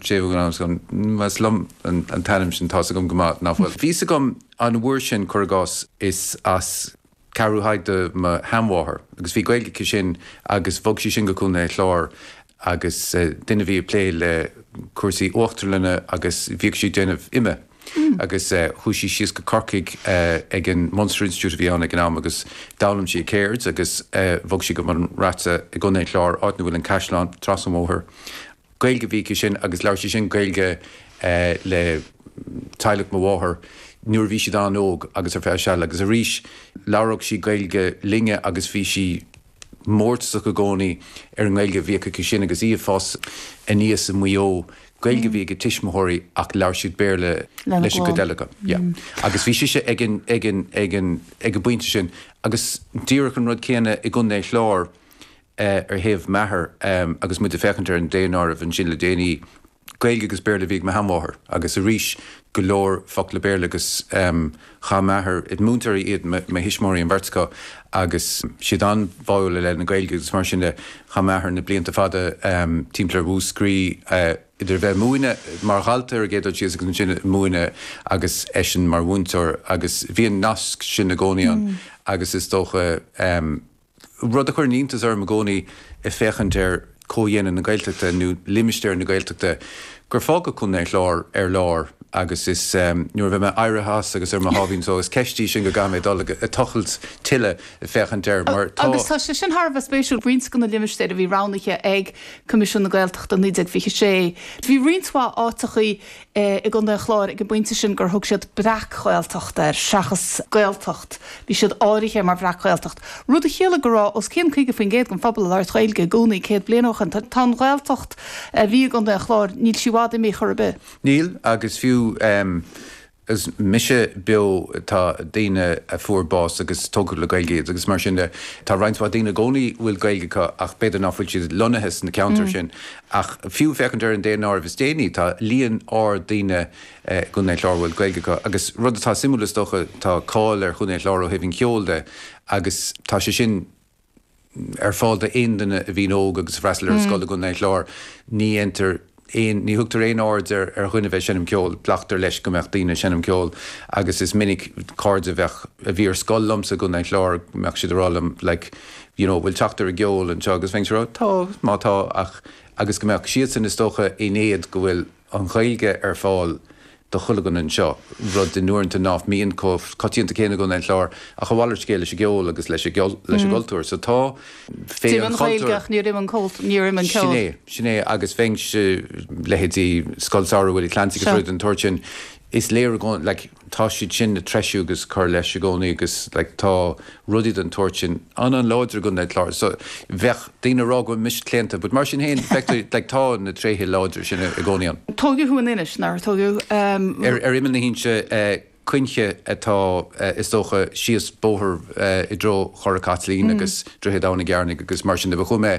Más liom an t-ainm sin, tá's agam go maith nach bhfuil. Bhí 'fhios agam an uair sin, cuir i gcás, is as Ceathrú Thaidhg do mo sheanmháthair agus bhí Gaeilge aici sin agus bhog sí sin go Contae an Chláir agus duine a bhí ag plé le cúrsaí uachtarlainne agus bhíodh sí ag déanamh ime agus chuaigh sí síos go Corcaigh ag an Munster Institute a bhí ann ag an am agus d'fhoghlaim sí a ceird agus bhog sí go Bun Raite i gContae an Chláir, áit 'na bhfuil an caisleán, trasna an bhóthair. Gaeilge a bhí aici sin agus labhair sí sin Gaeilge le teaghlach mo mháthar nuair a bhí siad an-óg agus ar feadh seal agus arís labhródh sí Gaeilge linne agus bhí sí mórtasach i gcónaí ar an nGaeilge a bhíodh aici sin agus í ag fás aníos i Maigh Eo. Gaeilge a bhí ag a tuismitheoirí ach labhair siad Béarla Lena leis an gcuid clann. eile acu. Yeah. Agus bhí sise ag an, ag an, ag an, ag an bpointe sin agus díreach an rud céanna i gContae an Chláir, ar thaobh m'athar agus muid ag féachaint ar an daonáireamh ansin le déanaí, Gaeilge agus Béarla a bhí ag mo sheanmháthair agus arís go leor focla Béarla agus chaith m'athair, múinteoirí iad mo thuismitheoirí an bheirt acu agus siad an-bháúil i leith na Gaeilge agus mar sin de, chaith m'athair na blianta fada timpeall ar Mhúscraí idir a bheith ag múineadh, mar dhalta ar an gcéad dul síos agus ansin ag múineadh agus eisean mar mhúinteoir agus bhí an nasc sin i gcónaí ann agus is dócha. Rud a chuireann iontas orm i gcónaí ag féachaint ar chomhdhéanamh na Gaeltachta, nó limistéar na Gaeltachta, gur fágadh Contae an Chláir ar lár agus is nuair a bheidh mé éirithe as agus ar mo sháimhín só, is ceist í sin go gcaithfidh mé dul ag tochailt tuilleadh ag féachaint air mar tá. Agus tá sé sin thar a bheith spéisiúil, roinnt de na limistéir a bhí roghnaithe ag Coimisiún na Gaeltachta i 1926, bhí roinnt mhaith áiteachaí i gContae an Chláir ag an bpointe sin gur thug siad Breac-Ghaeltacht air seachas Gaeltacht, bhí siad áirithe mar Bhreac-Ghaeltacht, rud a chiallaigh go raibh os cionn 50% den phobal ag labhairt Ghaeilge i gcónaí céad bliain ó shin. Tá an Ghaeltacht a bhí i gContae an Chláir, níl sí i bhfad imithe chor ar bith. Níl, agus fiú agus mise beo tá daoine a fuair bás agus tógadh le Gaeilge iad agus mar sin de, tá roinnt mhaith daoine i gcónaí a bhfuil Gaeilge acu ach b'fhéidir nach bhfuil siad lonnaithe sna ceantair sin Ach fiú féachaint ar an daonáireamh is déanaí, tá líon ard daoine i gContae an Chláir a bhfuil Gaeilge acu. Agus rud atá suimiúil, is dócha, tá cáil ar Chontae an Chláir ó thaobh an cheoil de agus tá sé sin ar fáil d'aon duine a bhíonn óg agus a fhreastail ar an scoil i gContae an Chláir. Ní dhéantar aon, ní thugtar aon aird ar dhuine bheith ag seinm ceoil, glactar leis go mbeadh daoine ag seinm ceoil agus is minic cairde a bheadh, a bhí ar scoil liomsa i gContae an Chláir, go mbeadh siad ag rá liom like, you know, bhfuil teacht ar an gceol anseo agus bheinnse ag rá, tá, tá, má tá ach, agus go mbeadh siadsan is dócha in éad go bhfuil an Ghaeilge ar fáil do chuile dhuine anseo, rud uaireanta nach mbíonn chomh coitianta céanna i gContae an Chláir, ach a mhalairt scéil leis an gceol agus leis an gcultúr, so tá, D'imigh an Ghaeilge ach níor imigh an, níor imigh an ceol. Sin é, sin é agus féach ar leithéidí Scoil Samhraidh Willie Clancy agus rudaí den tsórt sin, is léir i gcónaí, like, tá siad sin á threisiú agus ag cur leis i gcónaí agus like tá rudaí den tsórt sin an-an-láidir i gContae an Chláir so bheadh daoine ag rá go bhfuil mise claonta but mar sin féin feictear like tá na tréithe láidre sin i gcónaí ann. Tógadh thú in Inis, nár tógadh? Ar imeall na hInse Cuinche atá is dócha, síos bóthar i dtreo Chora Chaitlín agus Droichead Abhann Ó gCearnaigh agus mar sin de, but chuaigh mé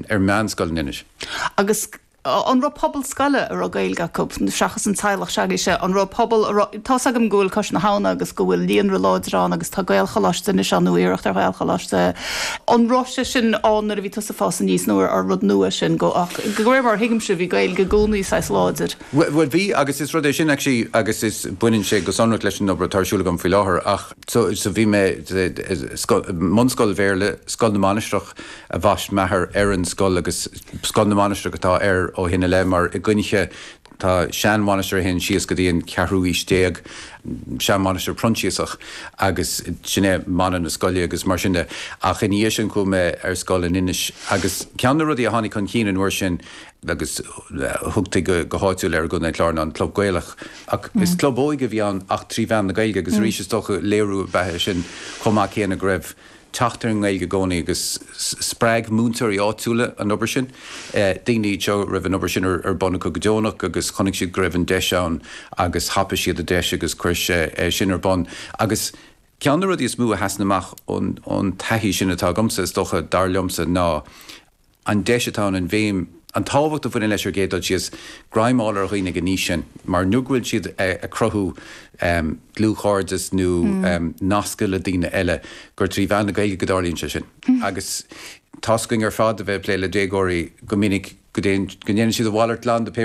ar mheánscoil in Inis. Agus an raibh pobal scoile a raibh Gaeilge acu, seachas an teaghlach s'againne, an raibh pobal a raibh, tá's agam go bhfuil Cois na hAbhna agus go bhfuil líonra láidir ann agus tá Gaelcholáiste anois ann nó iarracht ar Ghaelcholáiste, an raibh sé sin ann nuair a bhí tusa ag fás aníos nó an rud nua sin go, ach de réir mar a thuigimse bhí Gaeilge i gcónaí saghas láidir. Bhuel bhí agus is rud é sin actually agus is, baineann sé go sonrach leis an obair atá ar siúl agam faoi láthair ach so bhí mé i scoil, i mbunscoil Bhéarla, Scoil na Mainistreach, a bhaist m'athair ar an scoil agus Scoil na Mainistreach atá air ó shin i leith mar i gCuinche tá seanmhainistir a théann siar go dtí an cheathrú aois déag, seanmhainistir Phroinsiasach agus sin é mana na scoile agus mar sin de. Ach ina dhiaidh sin chuaigh mé ar scoil in Inis agus ceann de na rudaí a tháinig chun cinn an uair sin, agus thugtaí go háitiúil air i gContae an Chláir, ná an Club Gaelach ach is club óige a bhí ann ach trí mheán na Gaeilge agus arís is dócha léiriú ab ea é sin chomh maith céanna go raibh teacht ar an nGaeilge i gcónaí agus spreag múinteoirí áitiúla an obair sin. Daoine iad seo a raibh an obair sin ar bun acu go deonach agus chonaic siad go raibh an deis ann agus thapaigh siad an deis agus cuireadh é sin ar bun. Agus ceann de na rudaí is mó a sheasann amach ón taithí sin atá agamsa, is dócha, dar liomsa, ná, an deis atá ann, an bhéim, an tábhacht a bhaineann leis ar an gcéad dul síos, greim a fháil ar dhaoine ag an aois sin mar nuair go bhfuil siad ag cruthú dlúthchairdeas nó nasc le daoine eile, gur trí mheán na Gaeilge go dtarlaíonn sé sin. Agus tá's againn ar fad a bheith ag plé le déagóirí go minic go dtéann, go ndéanann siad a mhalairt glan de pé